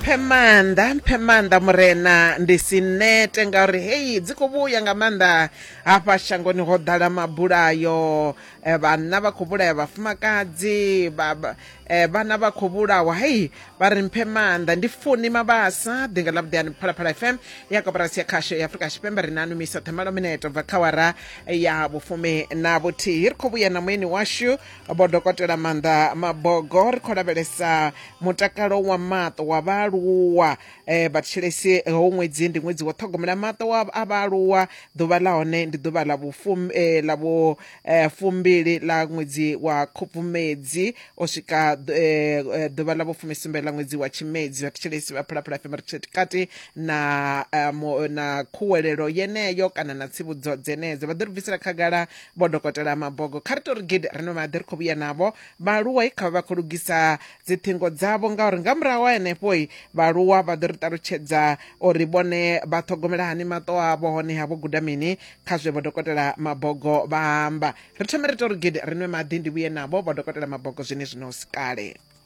mphe maanḓa mphe maanḓa murena ndi si nete ngauri heyi dzi khou vhuya nga maanḓa hafha shangoni ho ḓala mabulayo eh, vhanna vha khou vhulaya vhafumakadzi vha- vha- eh, vhana vha khou vhulawa heyi vha ri mphe maanḓa ndi funi mabasa ḓinga ḽa vhuḓeani phalaphala fm ya koporasi ya khasho ya afurika tshipembe ri na numisa themalo mineto bva kha wara ya vhufumi na vhuthihi ri khou vhuya na mueni washu vho dokotela maanḓa mabogo ri khou lavhelesa mutakalo wa maṱo wa vhaaluwa um vhatshilesi ho ṅwedzi ndi ṅwedzi wa ṱhogomela maṱo wa a vhaaluwa ḓuvha ḽa hone ndi ḓuvha ḽa vhufum eh, ḽa vhu eh, fumbili ḽa ṅwedzi wa khubvumedzi o swika ḓu- eh, eh, ḓuvha ḽa vhufumisumbe ḽa ṅwedzi wa tshimedzi vhatshilesi vha phalaphala fm ri tshee kati na eh, mo- na khuwelelo yeneyo kana na tsivhudzo dzenedzo vha ḓo ri bvisela khagala Vho Dokotela Mabogo kha ri tou ri gidi ri no maḓi ri khou vhuya navho. Vhaaluwa kha vha vha khou lugisa dziṱhingo dzavho ngauri nga murahu ha henefho vhaaluwa vha ḓo ri ṱalutshedza uri vhone vha ṱhogomela hani maṱo avho hone ha vho guda mini kha zwe Vho Dokotela Mabogo vha amba. Ri thome ri tou ri gidi ri nwe maḓi ndi vhuye navho Vho Dokotela Mabogo zwenezwino hu si kale.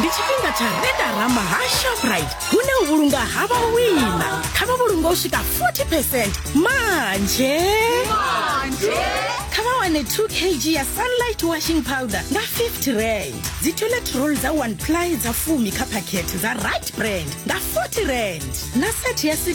ndi tshifhinga tsha redarama ha shoprite hune u vhulunga ha vhawina kha vha vhulunga u swika 40 percent manje kha vha wane 2 kg ya sunlight washing powder nga 50 rand dzi toilet roll dza 1 ply dza fumi kha phakhethe dza right brand nga 40 rand na set ya 6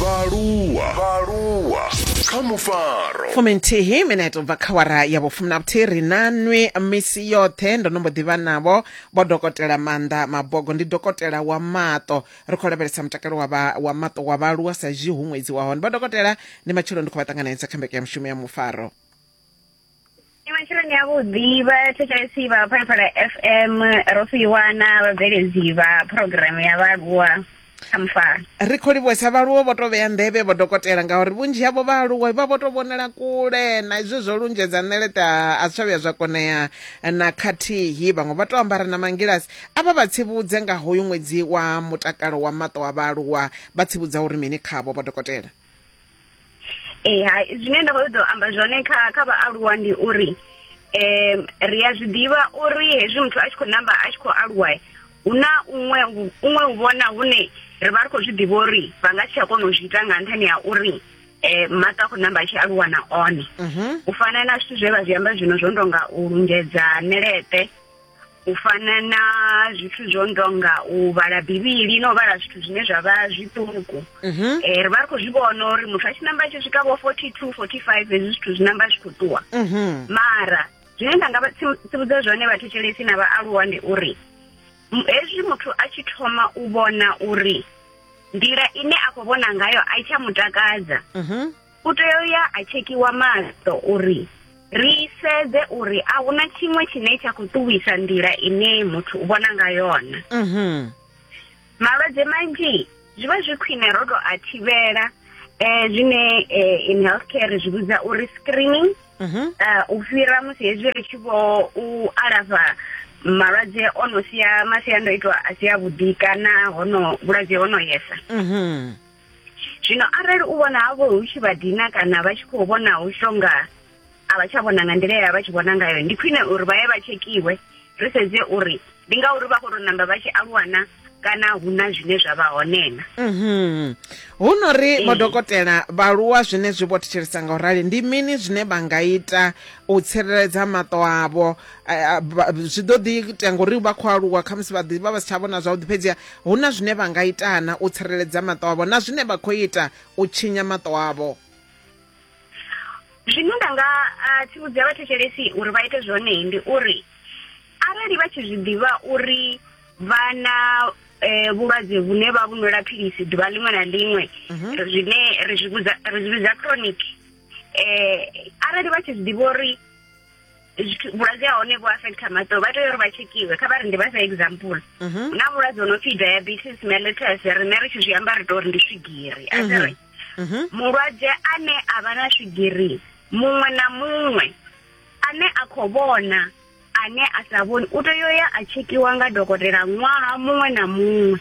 vhaaluwa vhaaluwa kha mufaro fuminthihi mineto bva kha wara ya vhufumi na vhuthihi ri na nwi misi yoṱhe ndo no mbo ḓivha navho vho dokotela maanḓa mabogo ndi dokotela wa maṱo ri khou lavhelesa mutakalo wa vha- wa maṱo wa vhaaluwa sa izwi hu ṅwedzi wa hone vha dokotela ndi matshelo ndi khou vha ṱanganedza kha mbekanyamushumo ya mufaro ni matshiloni avhuḓi vha thetshelesi vha phalaphala f m ro fhiwana vhabveledzi vha phurogiramu ya vhaaluwa kha mufaro ri khou livhuwesa vhaaluwa vho to vhea nḓevhe vho dokotela ngauri vhunzhi havho vhaaluwa vha vho to vhonela kule na izwo zwo lunzhedza ṋeleṱe a a si tsha vhuya zwa konea na khathihi vhaṅwe vha to ambara na mangilasi a vha vha tsivhudze nga hoyu ṅwedzi wa mutakalo wa maṱo a vhaaluwa vha tsivhudza uri mini khavho vho dokotela eh hai zwine nda khou ḓo amba zwone kha kha vhaaluwa ndi uri eh ri a zwi ḓivha uri hezwi muthu a tshi khou namba a tshi khou aluwa hu na unwe unwe u vhona hune ri vha ri khou zwi ḓivha uri vha nga tsha kona u zwi ita nga nṱhani ha uri eh mata khou namba tshi aluwa na one mhm. u fana na zwithu zwe vha zwi amba zwino zwo ndonga u lungedza ṋeleṱe u fana na zwithu zwo ndonga u vhala bivhili no vhala zwithu zwine zwa vha zwiṱuku mhm. eh, ri vha ri khou zwi vhona uri muthu a tshi namba tshi swika vho forty two forty five hezwi zwithu zwi namba zwi khou ṱuwa mhm. mara zwine nda nga tsivhudza zwone vhathetshelesi na vhaaluwa ndi uri hezwi muthu a tshi thoma u vhona uri nḓila ine a khou vhona ngayo a i tsha mutakadza mhm. u tea u ya a tshekhiwa maṱo uri ri sedze uri a huna tshiṅwe tshine tsha khou ṱuwisa nḓila ine muthu u vhona nga yona mhm. malwadze manzhi zwi vha zwi khwine ro tou a thivhela um zwine eh, in health care ri zwi vhidza uri screening mhm. eh, u fhira musi hezwi ri tshi vho u alafha malwadze o no sia masiandoitwa a si a vhuḓi kana hono vhulwadze ho no yesa mhm. zwino arali u vhona havho hu tshi vha dina kana vha tshi khou vhona hu shonga a vha tsha vhona nga nḓila ya vha tshi vhona ngayo ndi khwine uri vha ye vha tshekhiwe ri sedze uri ndi ngauri vha khou tou namba vha tshi aluwana kana hu na zwine zwa vha honena mhm. hu no ri eh. madokotela vhaaluwa zwine zwi vho thetshelesa nga u rali ndi mini zwine vha nga ita u tsireledza maṱo avho zwi ḓo ḓi tea ngori vha khou aluwa khamusi vha ḓivha vha si tsha vhona zwavhuḓi fhedziha hu na zwine vha nga itana u tsireledza maṱo avho na zwine vha khou ita u tshinya maṱo avho zwine nda nga tsivhudza vhathetshelesi uri vha ite zwone ndi uri arali vha tshi zwi ḓivha uri vha na eh vhulwadze vhune vha vhunwela philisi ḓuvha ḽiṅwe na ḽiṅwe mhm. zwine ri zwi vhidza chronic eh arali vha tshi zwi ḓivha uri vhulwadze ha hone vhu affect kha maṱo vha tea uri vha tshekhiwe kha vha ri ndi vha sa example mhm. na vhulwadze ho no pfhi diabetes mellitus rine ri tshi zwi amba ri to uri ndi swigiri a mhm. ri mhm. mulwadze ane a vha na swigiri muṅwe na muṅwe ane a khou vhona ane a sa vhoni u tea uya a tshekhiwa nga dokotela ṅwaha muṅwe na muṅwe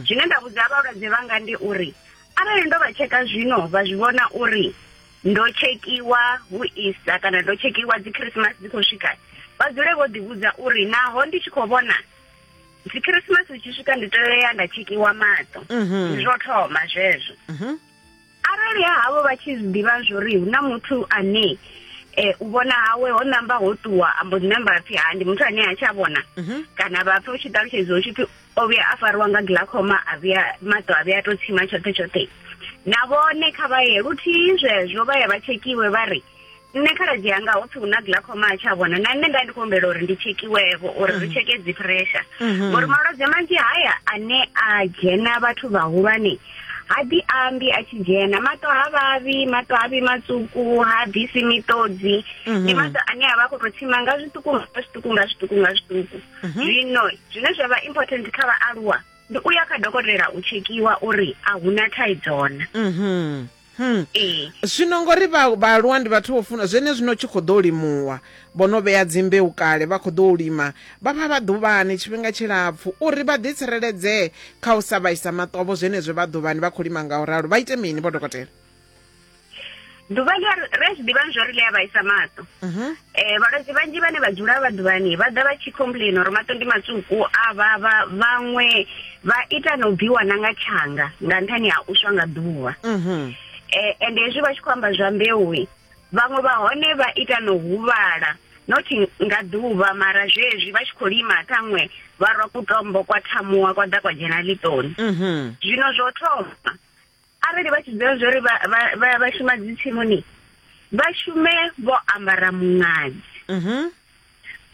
zwine nda vhudza vhalwadze vhanga ndi uri arali ndo vha tsheka zwino vha zwi vhona uri ndo tshekhiwa hu Easter kana ndo tshekhiwa dzi Christmas dzi khou swika vha dzule vho ḓivhudza uri naho ndi tshi khou vhona dzi Christmas dzi tshi swika ndi tea nda tshekhiwa maṱo mhm. zwo thoma zwezwo mhm. arali ha havho vha tshi zwi ḓivha zwori hu na muthu ane eh u vhona hawe ho namba ho ṱuwa ambo dzi namba phi ha ndi muthu ane a tsha vhona mhm. kana vha pfa u tshi ṱalutshedza u tshi phi o vhuya a fariwa nga glaucoma a vhuya maṱo a vhuya to tsima tshoṱhe tshoṱhe na vhone kha vha ye luthihi zwezwo vha ye vha tshekhiwe vha ri nṋe khaladzi yanga ho pfi hu na glaucoma a tsha vhona na nṋe nda ndi khou humbela uri ndi tshekhiwevho uri ri mm. tsheke dzi pressure mm-hmm. ngori malwadze manzhi haya ane a dzhena vhathu vhahulwane ha ḓi ambi a tshi dzhena maṱo ha vhavhi maṱo ha vhi matsuku ha bvisi miṱodzi mm-hmm. ndi maṱo ane a vha a khou tou tsima nga zwiṱuku nga zwiṱuku nga zwiṱuku nga zwiṱuku mhm. zwino zwine zwa vha important kha vhaaluwa ndi u ya kha dokotela u tshekhiwa uri a hu na thaidzo na mhm. Hmm. Eh. zwino ngori vhaaluwa ndi vhathu vho funa zwene zwino tshi khou ḓo limuwa vho no vhea dzimbeu kale vha khou ḓo u lima vha vha vha ḓuvhani tshifhinga tshilapfhu uri vha ḓi tsireledzee kha u sa vhaisa maṱovho zwenezwo vha ḓuvhani vha khou lima nga u ralo vha ite mini vho dokotela ḓuvha ḽi ri zwi ḓivha zwo ri ḽi a vhaisa maṱo um mhm. eh, vhalwadze vhanzhi vhane vha dzula vha ḓuvhani vha ḓa vha tshi complain uri maṱo ndi matswuku a vhavha vhaṅwe vha ita na u bviwa na nga tshanga nga nṱhani ha u swa nga ḓuvha mhm. eh, ende hezwi vha tshi khou amba zwa mbeuwi vhaṅwe vha hone vha ita na u huvhala not nga ḓuvha mara zwezwi vha tshi khou lima ṱhaṅwe vha rwa kutombo kwa thamuwa kwa ḓa kwa dzhena ḽiṱoni mhm. zwino zwo thoma arali vha tshi dzula zwori vha vha vha shuma dzi tsimuni vha shume vho ambara muṅadzi mhm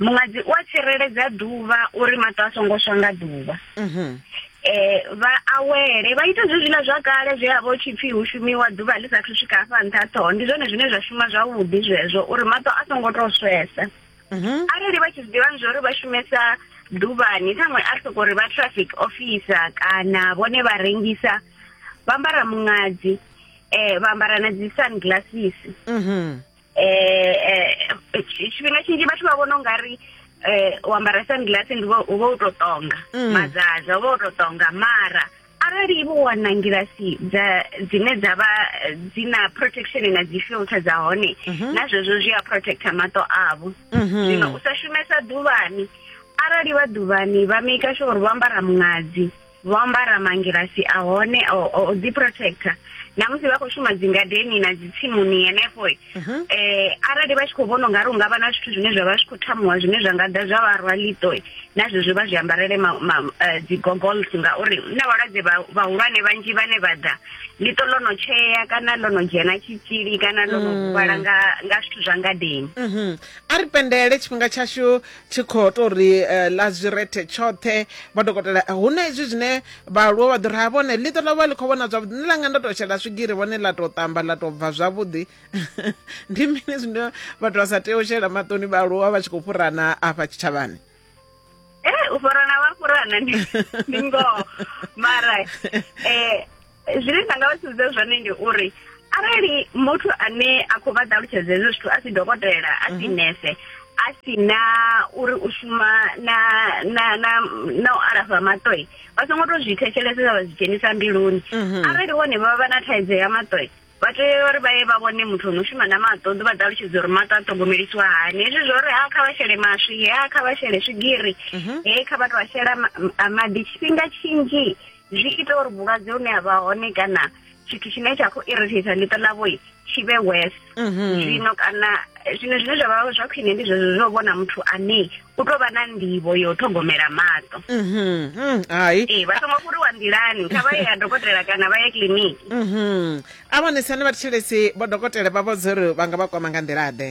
muṅadzi u a tsireledza ḓuvha uri maṱo a songo swa nga ḓuvha mhm eh vha awele vha ita zwi zwina zwa kale zwe a vho tshipfi hu shumiwa ḓuvha ḽi sa thu swika afha nṱha ṱhoho ndi zwone zwine zwa shuma zwavhuḓi zwezwo uri maṱo a songo to swesa mhm. arali vha tshi zwiḓivha zwa uri vha shumesa ḓuvhani ṱhaṅwe a soko uri vha traffic officer kana vhone vha rengisa vha ambara muṅadzi um vha ambara na dzi sun glasses um tshifhinga tshinzhi vhathu vha vhona u nga ri um u ambara sun glass ndi uvha u to tonga mm. mazaza uvha u to tonga mara arali vho wana ngilasi dza dzine dza vha eh, dzi na protection na dzi filter dza hone mhm. na zwezwo zwi a protecta maṱo avho mhm. zwino u sa shumesa ḓuvhani arali vha ḓuvhani vha maker sure uri vho ambara muṅadzi vho ambara mangilasi a hone o ḓi protecta na musi vha khou shuma dzingadeni na dzitsimuni henefho mhm. eh arali vha tshi khou vhona ungari unga vha na zwithu zwine zwa vha zwi khou thamuwa zwine zwa nga ḓa zwa vha rwa ḽiṱo na zwezwo vha zwi ambarele eh, dzi goggles ngauri na vhalwadze vhahulwane vhanzhi vhane vha ḓa ḽiṱo ḽo no tshea kana ḽo no dzhena tshitzhili kana ḽo no mm. huvhala nga zwithu zwa ngadeni mhm. a ri pendele tshifhinga tshashu tshi khou tou ri eh, ḽa zwi rethe tshoṱhe madokotela eh, hu na izwi zwine vhaaluwa vha ḓo ri ha vhone ḽiṱo ḽa vha ḽi khou vhona zwavhuḓi ni langa ndo tou shela swigiri vhone ḽa tou ṱamba ḽa tou bva zwavhuḓi ndi mini zwine vhathu vha sa tea u shela maṱoni vhaaluwa vha tshi khou fhurana afha tshitshavhani eh, u fhurana vha fhurana ndi ngoho mara um zwine nda nga vha sumbedza zwone ndi uri arali muthu ane a khou vha ṱalutshedza hezwo zwithu a si dokotela a si mhm. nese a si na uri u shuma na na na na u alafha maṱoi vha songo tou zwi thetshelesesa vha zwi dzhenisa mbiluni mhm. arali vhone vha vha na thaidzo ya maṱoi vha tea uri vha ye vha vhone muthu ono shuma na maṱo ḓi vha ṱalutshedza uri maṱo a ṱhogomelisiwa hani hezwi zwo uri ha kha vha shele maswi he ha kha vha shele swigiri mhm. he kha vha tou a shela maḓi tshifhinga tshinzhi zwi ita uri vhulwadze hune ha vha hone kana tshithu tshine tsha khou irritator ḽiṱo ḽavho tshi vhe wes mhm. zwino kana eh, zwino zwine zwa vha zwa khwine ndi zwezwo zwo vhona muthu ane u tou vha na nḓivho yo ṱhogomela maṱo mhm. mm, hai ee vha songo fhuriwa nḓilani kha vha ye ya dokotela kana vha ye kiliniki mhm. a vhonesi ane vha thetshelesi vho dokotela vha vhudza uri vha nga vha kwama nga nḓila ḓe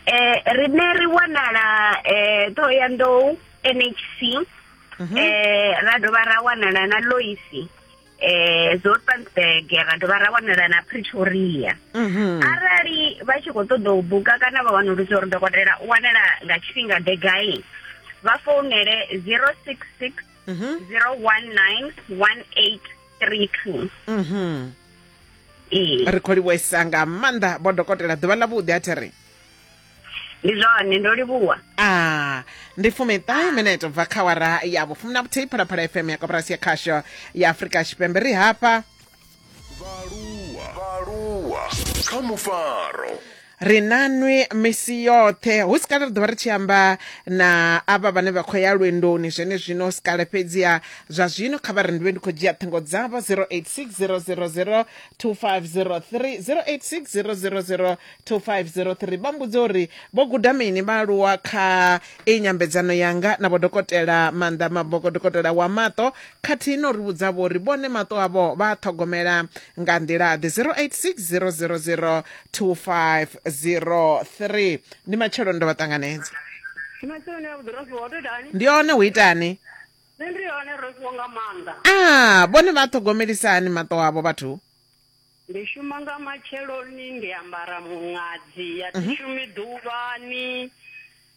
eh rine ri wanala eh Thohoyandou NHC mhm. eh ra dovha ra wanala na Loisi eh Zoutpansberg ra dovha ra wanala na Pretoria mhm. arali vha tshi khou ṱoḓa u buka kana vha wanulusa uri dokotela u wanala nga tshifhinga ḓe gai vha founele 066 019 1832 ee ri khou livhuwesa nga maanḓa vho dokotela ḓuvha ḽa vhuḓi a thi ri ndi zwone ndo livhuwa a ndi fumiṱahe minete bva kha wara ya vhufumi na vhuthihi phalaphala fm ya koporasi ya khasho ya afurika tshipembe ri hafha vhaaluwa kha mufaro ri na nwi misi yoṱhe hu si kale ri ḓovha ri tshi amba na avha vhane vha khou ya lwendoni zwene zwino si kale fhedziha zwa zwino kha vha ri ndi vhe ndi khou dzhia ṱhingo dzavho 0860002503 0860002503 vha mbudze uri vho guda mini vhaaluwa kha i nyambedzano yanga na vhodokotela maanḓa maboko dokotela wa maṱo khathihi no ri vhudza vho uri vhone maṱo avho vha a ṱhogomela nga nḓila ḓe 086000 2503 ndi matshelo ndo vha ṱanganedza Masoni a vhuḓi Rosiwa, tou itani? ndi one hu itani Nṋe ndi hone Rosiwa nga maanḓa. a vhone vha ṱhogomelisa hani maṱo avho vhathu Ndi shuma nga matsheloni, ndi ambara muṅadzi, a thi shumi ḓuvhani.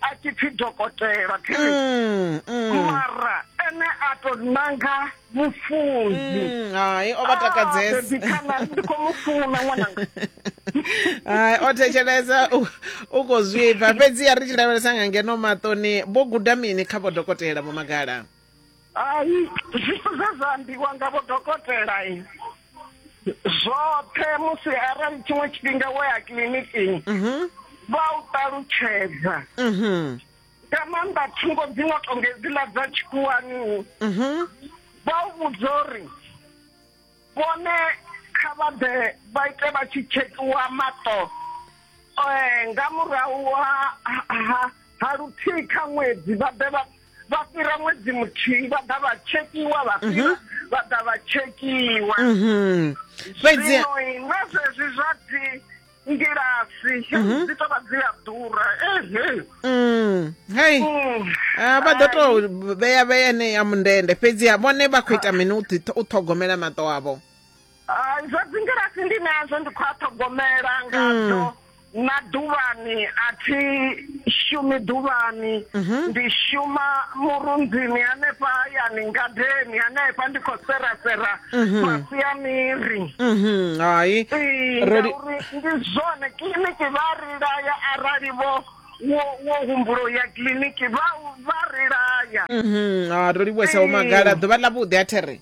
a tshi pfi dokotela mm, mm. mara ene a to nanga mufunzi mm, hai o vha takadzesakhanani ah, ndi khou mu funa ṅwananga hai o thetshelesa u khou zwipfa fhedzi ya ri tshi lavhelesa nga ngeno maṱoni vho guda mini kha vhodokotela vho magala Hai, zwithu zwe zwa ambiwa nga vho dokotela zwoṱhe musi arali tshiṅwe tshifhinga wo ya kiḽinikini mhm. vha u ṱalutshedza mhm. nga maanḓa thungo dzi no tonga hedziḽa dza tshikhuwani mhm. vha u vhudza uri vhone kha vha ḓe vha ite vha tshi tshetiwa maṱo eh, nga murahu ha luthihi kha ṅwedzi vha ḓe vha vha fhira ṅwedzi muthihi vha ḓa vha tshetiwa vha fhira mhm. vha ḓa vha tshetiwa mhm. fhedzi zwino na zwezwi zwa dzi ngilasi mhm. dzi tovha dzi a ḓura ehe mm, hei mm. ah, vha ḓo tou vhea vhea ene ya mundende fhedziha vhone vha khou ita mini u ṱhogomela maṱo avho ah, zwa dzingilasi ndi nazwo ndi khou a ṱhogomela ngadzo mm. na ḓuvhani a thi shumi ḓuvhani mhm. ndi shuma murunzini hanefha hayani ngadeni hanefha ndi khou serasera mhm. fhasi ya miri mhm, hai ngauri ndi zwone kiḽiniki vha ri laya arali vho wo humbulo ya kiḽiniki vha ri laya a ro livhuwesa vho magala ḓuvha ḽa vhuḓi a there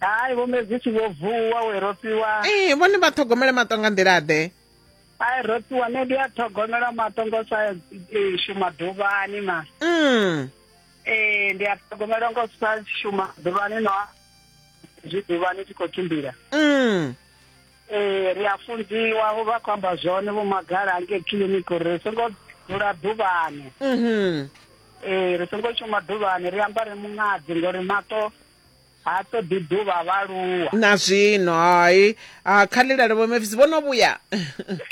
hai vho medzisi vho vuwa we ro fhiwa ee vhone vha ṱhogomele maṱo nga nḓila ḓe ai ro fhiwa ne ndi a ṱhogomela maṱo ngo sa e, shuma ḓuvhani ma mm. ee ndi a ṱhogomela ngo sa shuma ḓuvhani no zwi ḓuvhani tshi khou tshimbila mm. ee ri a funziwa vho vha khou amba zwone vho magala ange kiliniki uri ri songo dzula ḓuvhani mm-hmm. ee ri songo shuma ḓuvhani ri ambare muṅadzi ngori maṱo ha ṱoḓi ḓuvha vhaaluwa na zwino hai a kha lilale vho mefisi vho no vhuya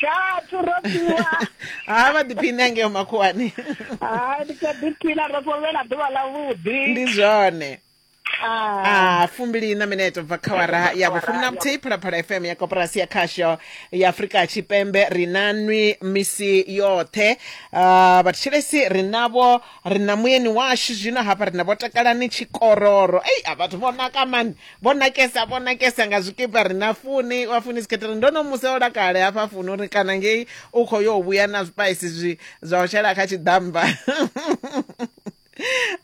khathu ro fhiwa ha vha ḓiphini angeo makhuwani hai ndi kha ḓiphina ro fhovhela ḓuvha ḽa vhuḓi ndi zwone a fumbili na mineto bva kha wara ya vhufumi na muthihi phalaphala fm ya koporasi ya khasho ya afurika tshipembe ri na nwi misi yoṱhe vhathetshelesi ri navho Ri na muyeni washu zwino hafha ri na Vho Takalani Tshikororo. Ei a vhathu vho naka mani. Vho nakesa vho nakesa nga zwikipa ri na Funi wa Funi's Catering. Ndo no mu seola kale hafha Funi uri kana ngei u kho yo vhuya na zwipaisi zwi zwa u shela kha tshiḓammba.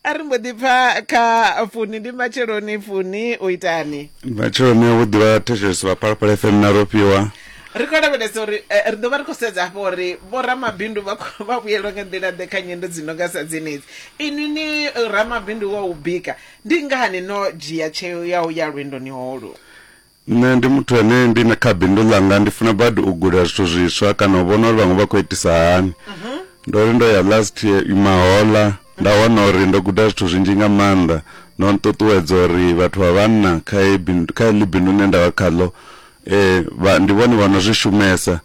a ri mbo ḓi pfa kha funi ndi matsheloni funi u itani matsheloni a vhuḓi vha thetshelesi vha phalaphala fm na rofhiwa ri khou lavhelesa uri eh, ri ḓo vha ri khou sedza hafho uri vhoramabindu vha khou- vha vhuyelwa nga nḓila ḓe kha nyendo dzi nonga sa dzenedzi inwi ni eh, ramabindu wa u bika ndi ngani no dzhia tsheo ya u ya lwendoni holu nṋe ndi muthu ane ndi na kha bindu ḽanga ndi funa badi u guda zwithu zwiswa kana u vhona uri vhaṅwe vha khou itisa hani ndo ri ndo ya last year mahola nda wana uri ndo guda zwithu zwinzhi nga maanḓa no nṱuṱuwedza uri vhathu vha vhanna kha heyi bindu- kha heḽi bindu ḽine nda vha khaḽo eh vha ndi vhone vha no zwi shumesa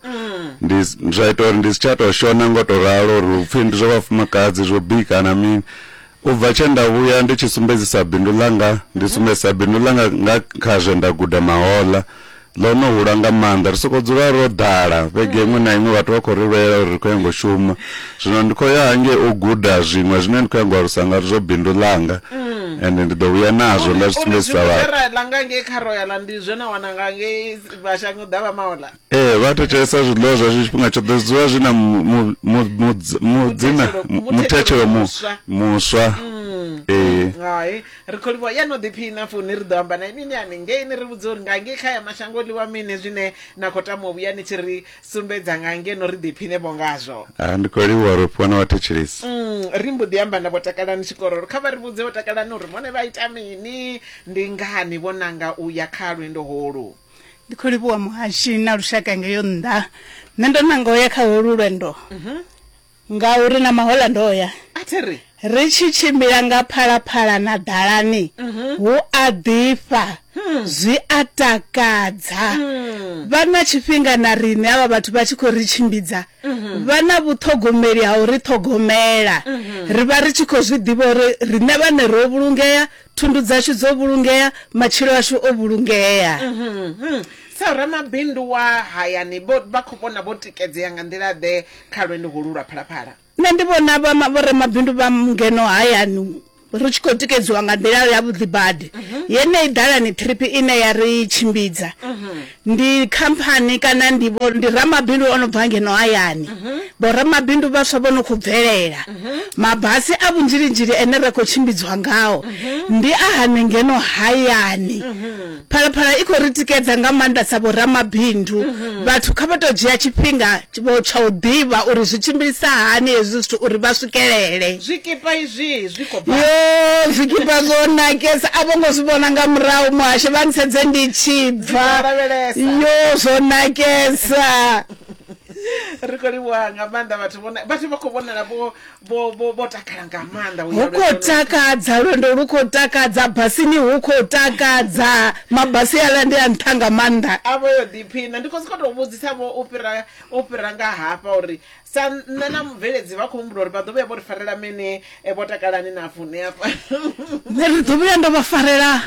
ndi s- zwa ita uri ndi si tsha tou shona ngo tou ralo uri hu pfhi ndi zwa vhafumakadzi zwo bika na mini u bva tshe nda vhuya ndi tshi sumbedzisa bindu ḽanga ndi sumbedzisa bindu ḽanga nga kha zwe nda guda mahoḽa ḽo no hula nga maanḓa ri sokou dzula ro ḓala vhege iṅwe na iṅwe vhathu vha khou ri lwela uri ri khou ya ngo shuma Zwino ndi khou ya hangei u guda zwiṅwe zwine ndi khou ya ngo alusa nga zwo bindu ḽanga ende ndi ḓo vhuya nazwo nda zwi sumbedzisa vhathu Zera la nga ngei kha royal ndi zwe na wana nga ngei vhashango ḓa vha maola. ee vha thetshelesa zwiḽiwa zwashu tshifhinga tshoṱhe zwi dzula zwi na mu- mu- mu- mu- dz- mudzina Muthetshelo- mu- muthetshelo muthetshelo mu- muswa. muswa ee Hai, ri khou livhuwa ya no ḓiphina funi ri ḓo amba na inwi ni haningei ni ri vhudze uri nga ngei kha ya mashango ḽiwa mini zwine na khou tama u vhuya ni tshi ri sumbedza nga ngeno ri ḓiphine vho ngazwo Ah, ndi khou livhuwa ro fhiwa na vhathetshelesi Mm, ri mbo ḓi amba na vho takalani tshikororo kha vha ri vhudze vho takalani uri vhone vha ita mini ndi ngani vho nanga u ya kha lwendo holu ndi khou livhuwa muhashi na lushaka ngeyo nnḓa nṋe ndo nanga u ya kha holu lwendo Ngauri na mahoḽa ndo ya. A thi ri. Ri tshi tshimbila nga phalaphala na ḓalani, hu a ḓifha, zwi a takadza. Vha na tshifhinga na riṋe, avha vhathu vha tshi khou ri tshimbidza. Vha na vhuṱhogomeli ha u ri ṱhogomela. Ri vha ri tshi khou zwi ḓivha uri riṋe vhaṋe ro vhulungea, thundu dzashu dzo vhulungea, matshilo ashu o vhulungea. Sa ramabindu wa hayani, vha khou vhona vho tikedzea nga nḓila-ḓe kha lwendo holu lwa phalaphala. Nṋe ndi vhona vhoramabindu vha ngeno hayani ri tshi khou tikedziwa nga nḓila ya vhuḓi badi mhm. yeneyi ḓalani trip ine ya ri tshimbidza mhm. ndi khamphani kana ndi ndi ramabindu o no bva ngeno hayani mhm. vhoramabindu vhaswa vho no khou bvelela mabasi a vhunzhilinzhili ene ra khou tshimbidzwa ngao ndi a hane ngeno hayani Phalaphala i khou ri tikedza nga maanḓa sa vhoramabindu. Vhathu kha vha tou dzhia tshifhinga vho tsha u ḓivha uri zwi tshimbilisa hani hezwi zwithu uri vha swikelele. Zwikipa izwi zwi khou bva. Yoo zwikipa zwo nakesa a vho ngo zwi vhona nga murahu muhasho vha ntsedze ndi tshi bva. Ndi khou lavhelesa. Yoo zwo nakesa. Ri khou livhuha nga maanḓa vhathu vho na, vhathu vha khou vhonala vho vho vho vho takala nga maanḓa u ya hu khou lwendoni. takadza lwendo lu khou takadza basini hu khou takadza mabasi aḽa ndi a nṱha nga maanḓa a vho yo ḓiphina ndi khou sokou tou vhudzisa vho u fhira u fhira nga hafha uri sa nṋe na mubveledzi vha khou humbula uri vha ḓo vhuya vho ri farela mini eh, vho takalani na fune hafha nṋe ri ḓo vhuya ndo vha farela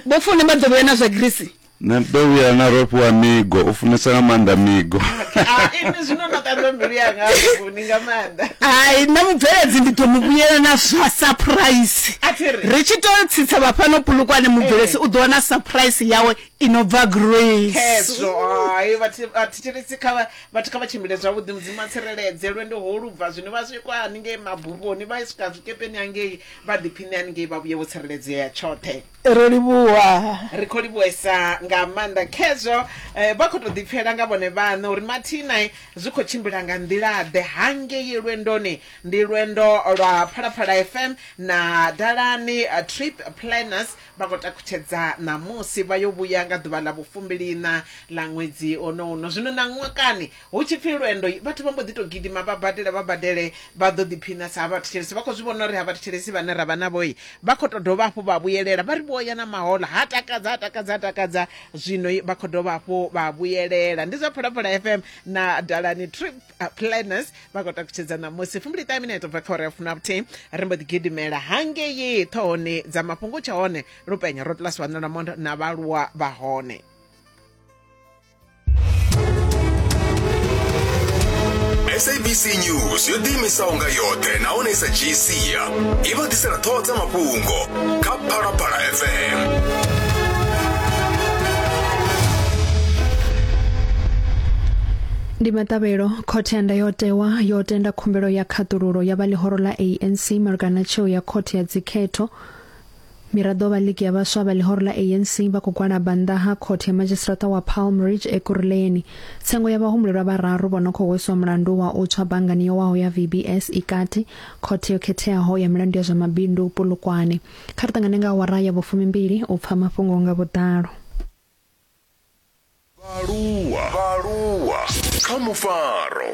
vho fune vha ḓo vhuya na zwa grisi Nṋe ndo vhuya na ro fhiwa migo, u funesa nga maanḓa migo. Inwi zwino no ṱanzwa mbilu yanga vhuguni nga maanḓa. Hai, nṋe mubveledzi ndi ḓo mu vhuyela na zwa saphuraisi. Ri tshi tou tsitsa vha fhano Polokwane, mubvelesi u ḓo wana saphuraisi yawe i no bva Grace. Khezwo, hai, vhathu vhathetshelesi kha vhathu kha vha tshimbile zwavhuḓi, Mudzimu a tsireledze. Lwendo ho lu bva zwino vha swika haningei mabufhoni, vha swika zwikepeni hangei, vha ḓiphiṋe haningei vha vhuye vho tsireledzea tshoṱhe. Ro livhuwa. Ri khou livhuhesa nga maanḓa khezwo. Eh, vha khou tou ḓipfela nga vhone vhaṋe uri mathina eh, zwi khou tshimbila nga nḓila-ḓe hangei lwendoni. Ndi lwendo lwa Phalaphala FM na Dalani eh, Trip Planners vha khou takhutshedza ṋamusi vha yo vhuya nga ḓuvha ḽa vhufumbiliiṋa ḽa ṅwedzi ono uno. Zwino ṋaṅwakani Hu tshi pfi lwendo, vhathu vha mbo ḓi tou gidima vha badela vha badele vha ḓo ḓiphina sa vhathetshelesi. Vha khou zwi vhona uri ha vhathetshelesi vhane ra vha navho vha khou tou dovha hafhu vha vhuyelela. Vha ri vho ya na mahoḽa, ha takadza ha takadza ha takadza, zwino vha khou dovha hafhu vha vhuyelela. Ndi zwa Phalaphala FM na Dalani Trip Planners vha khou takutshedza ṋamusi fumbiliṱahe minete bva kha uri ya fumi na vhuthihi. Ri mbo ḓi gidimela hangei ṱhohoni dza mafhungo, tsha hone Lupenya Road Plus Wanala Mondo na vhaaluwa vha hone. sabc news yo ḓiimisaho nga yoṱhe nahone i sa dzhii sia i vha ḓisela ṱhoho dza mafhungo kha phalaphala fm ndi maṱavhelo khothe ya ndayotewa yo tenda khumbelo ya khaṱululo ya vha ḽihoro ḽa anc malugana na tsheo ya khothe ya dzikhetho Miraḓo vha ligi ya vhaswa vha ḽihoro ḽa ANC vha khou gwalaba nnḓa ha khothe ya madzhisiṱiraṱa wa Palm Ridge Ekurhuleni. Tsengo ya vhahumulelwa vhararu vho no khou hweswa mulandu wa u tswa banngani yo waho ya VBS i kati khothe yo khetheaho ya milandu ya zwa mabindu Polokwane. Kha ri ṱangane nga awara ya vhufumimbili u pfa mafhungo nga vhuḓalo. Vhaaluwa kha mufaro.